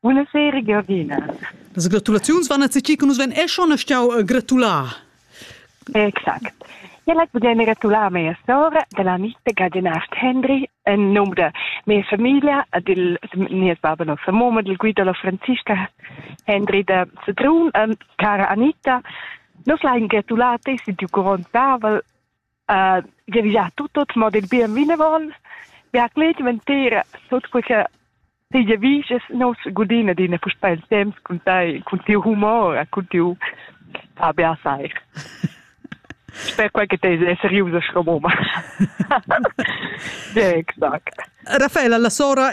Buona sera Giorgina. Las gratulaziuns van a tgi che nus ven e schon stau gratular. Exact. Ja lek budem gratular mia sora della amica Gadenast Hendry en num de mia famiglia e del nies baba no Samoma del Guido la Franziska Hendry de Sedrun e cara Anita. Nos lain gratular te si du grond Pavel uh, revisar tut, tut mo del bien vinevon, vi ha clet ventera sut quei che Tegia vis es nos gudina d'ina puspè il temps cun tai, cun tiu humor, cun tiu Fabia sai. Sper quai che te è seriusa scomoma. Exact. Raffaella, la sora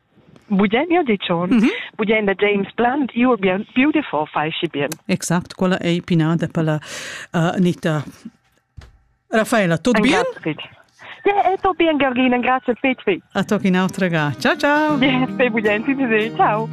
Budemia dicion, mm -hmm. budenda James Blunt, you are beautiful, fai și bien. Exact, quella ei pinada per la uh, Anita. Raffaella, tutto bien? Ja, tutto bien, Georgina, grazie Pitfi. A tocchi un'altra ga. Ciao ciao. Yes, budenti, ciao.